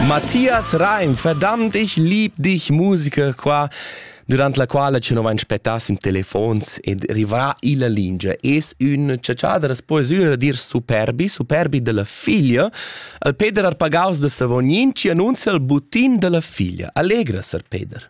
Matthias Reim, verdammt, ich lieb dich Musiker qua durant la quala ci non vain spettass in telefons ed rivrà illa lingia. Es ün ciaciadras poesüra dir superbi, superbi della figlia, al Peder Arpagaus de Savognin ci annunzia il butin della figlia. Allegra, Sir Peder.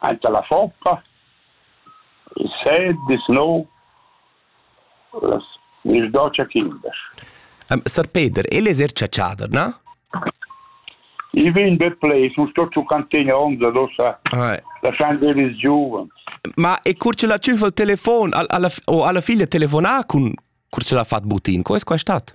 Aint alla foppa il sêt dis nouv las miss docia quindesch. Um, Sar Peter, el es eir chatschader, na? I vegn be plais, u sto giu cantegna onza dossa, Ai. lasciand ir ils giuvens. Ma e cur ce la tschüfa il telefon, al, alla, o alla figlia telefonà cun cur ce l'ha fat butin, co es quai stat?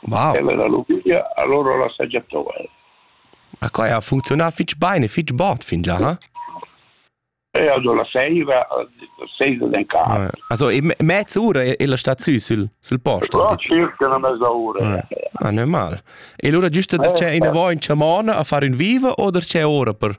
Wow. E la lubiglia allora la sagiatò el. Ma quai ha funcziunà fitg bene, fitg bot fin già, ha? E also la seiva, seiva den car. Also mezza ora è la sta sü sul, sul posto. Ja, circa una mezza ora. Ah, normal. E allora giusto da c'è una voi in chamona a fare un viva o da c'è ora per?